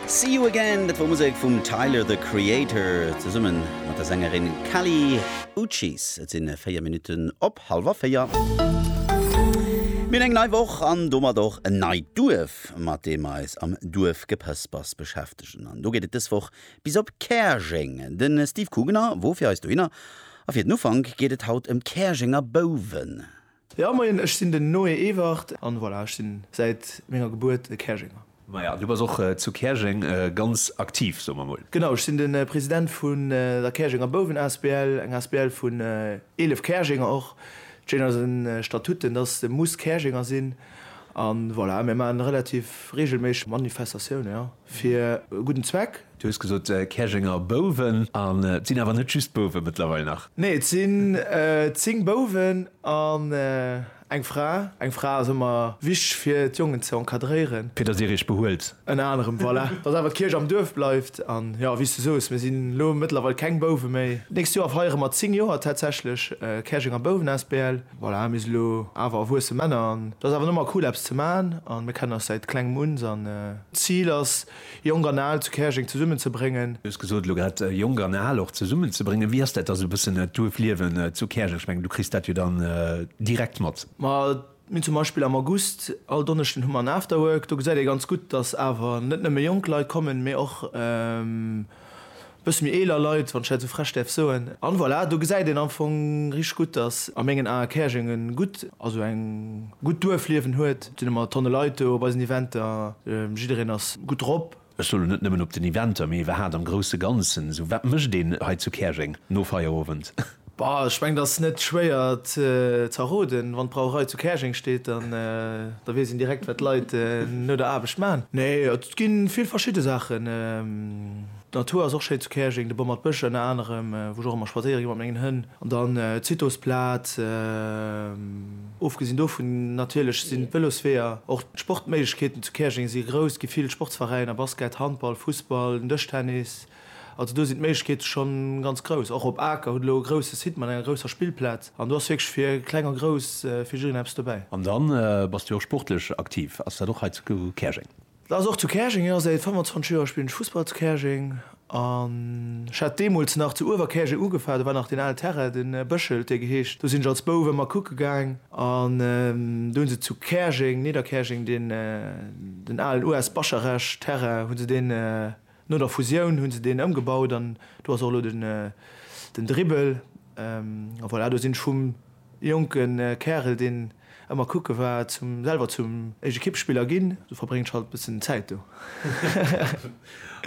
See You Again, dat wor Musek vum Tyler, The Creator, zesummen mat der Sängerin Kali Uchis. Et sinn 4 Minutten op halwer 4. Mir hunn eng nei Woch an domat och en neit Duerf, mat deem mer eis am Duerfgepëspers beschäftegen. An do geet et dës Woch bis op Käerjeng. De Steve Kugener wor fir eis dohinner a fir den Ufank geet et haut ëm d'Käerjenger Bouwen. Jo moien, ech sinn den Noé Ewert. An voilà, ech sinn säit menger Gebuert e Käerjenger. Maja, du bass och zu Käerjeng ganz aktiv, soe mer mol. Genau, ech sinn de President vun der Käerjenger Bouwen asbl, eng asbl vun 11 Käerjenger och. Et steet an eisen Statuten, dass de muss Käerjenger sinn. An voilà, mir maachen relativ reegelméisseg Manifestatiounen, jo. Fir e gudden Zweck. Du hues gesot Käerjenger Bouwen, an et sinn awer net just Bouwe mëttlerweil nach? Nee, et sinn 10 Bouwen an eng Fra. Eng Fra ass ëmmer wichteg fir d'Jongen ze encadréieren. Fir datt Dir Iech behuelt. Ënner anerem, voilà. Datt awer d'Kierch am Duerf bleift. An jo, wéi s du soos, mir sinn elo mëttlerweil keng Bouwe méi. D'nächst Joer feiere mer 10 Joer tatsächlech Käerjenger Bouwen asbl. Voilà, mir si lo awer erwuesse Männer an et ass awer nëmme cool eppes ze man a mir kennen eis säit klengem uns an. D'Zil ass Jonk an Al zu Käerjeng zesummen ze bréngen. Du hues gesot elo grad Jonk an Al och zesummen ze bréngen. Wéi ass dat da sou e bëssen d'Duerfliewen zu Käerjeng? Ech mengen du kriss dat jo dann direkt mat. Ma mir hunn zum Beispill am August, all Donneschden hu mer en Afterwork. Do gesäit ee ganz gutt, dass awer net nëmme jonk Leit kommen, mee och Bësse méi eeler Leit, wann ech dat esou frech däerf soen. An voilà, do gesäit een am Fong richteg gutt, dass a mengen Ae Käerjeng e gutt, also eng gutt Duerfliewen huet. Et sinn ëmmer Tonne Leit do op eisen Eventer, jiddereen ass gutt drop. Ech soe lo net nëmmen op den Eventer, mee iwwerhat am grousse Ganzen, esou wat mécht een hei zu Käerjeng no Feierowend? Bah, ech mengen ass net schwéier z'erroden. Wann d'Brauerei zu Käerjeng steet, dann da weess een direkt wat d'Leit no der Aarbecht man. Nee, et gi vill verschidde Saachen. D'Natur ass och schéi zu Käerjeng, de Bommert Bësch ënner anerem, wou ech och ëmmer spadséiere gi mat mengen Hënn. An dann d'Citosplaz. Ofgesinn dovun natierlech sinn d'Vëlosweeër, och d'Sportméiglechkeeten zu Käerjeng si grouss. Gi vill Sportsveräiner, Basket, Handball, Fussball, den Dëschtennis. Also do sinn d'Méiglechkeete scho ganz grouss. Och op Aker hutt elo e grousse Site mat enger grousser Spillplaz an do ass wierklech fir Kleng a Grouss fir jiddereen eppes dobäi. An dann bass du jo och sportlech aktiv. Ass dat och hei zu Käerjeng? Dat ass och zu Käerjeng, jo. Säit 25 Joer spillen ech Fussball zu Käerjeng an ech hat deemools nach zu Uewerkäerjeng ugefaangen. Do war nach deen alen Terrain, de Bëschel huet dee geheescht. Do sinn ech als Bouf ëmmer kucke gaang an do hu se zu Käerjeng, Nidderkäerjeng, deen alen US. Bascharech-Terrain hu se deen No der Fusioun hunn se deen ëmgebaut an do ass och elo den den Dribbel. A voilà, do sinn ech vum jonke Kärel, deen ëmmer kucke war, zum selwer zum Ekippspiller ginn. Du verbréngs halt e bëssen Zäit do.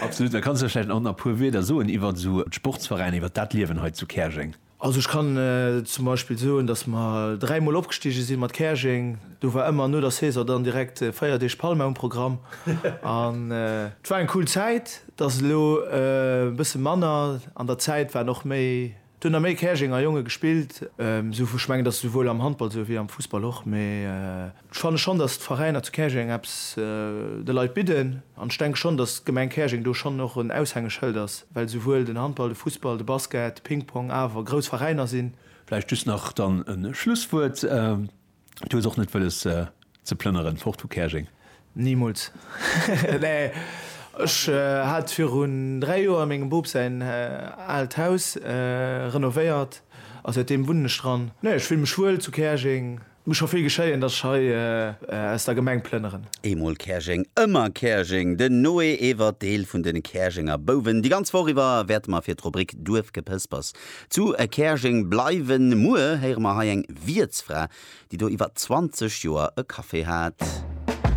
Absolut. Da kanns de vläicht nach a puer Wieder soen iwwert esou d'Sportsveräiner, iwwert dat Liewen hei zu Käerjeng. Also ech kann zum Beispill soen, datt mer dräi Mol opgestige si mat Käerjeng. Do war ëmmer no der Saison dann direkt véier Deeg Palma um Programm. An et war eng cool Zäit. Et ass elo e bësse manner. An der Zäit waren och méi, et hunn der méi Käerjenger Jonge gespillt. Ech mengen, et ass esouwuel am Handball esou wéi am Fussball och. Ech fanne schonn, datt d'Veräiner zu Käerjeng eppes de Leit bidden. An ech denke schonn, datt d'Gemeng Käerjeng do schonn och en Aushängeschëld ass, well souwuel den Handball, de Fussball, de Basket, de Pingpong awer grouss Veräiner sinn. Vläicht just nach dann e Schlusswuert, Du hues och net wëlles ze plënneren fort vu Käerjeng? Nimools! Nee, ech hat virun dräi Joer mengem Boob säin aalt Haus renovéiert a säitdeem wunnen ech dran. Nee, ech fille mech wuel zu Käerjeng. Muss scho vill geschéien, dass ech hei aus der Gemeng plënneren. Eemol Käerjeng, ëmmer Käerjeng! Den Noé Ewert, Deel vun de Käerjenger Bouwen. Déi ganz Woch iwwer wäerte mer fir d'Rubrik Duerfgepëspers zu Käerjeng bleiwen. Muer héiere mer hei eng Wiertsfra, déi do iwwer 20 Joer e Café hat.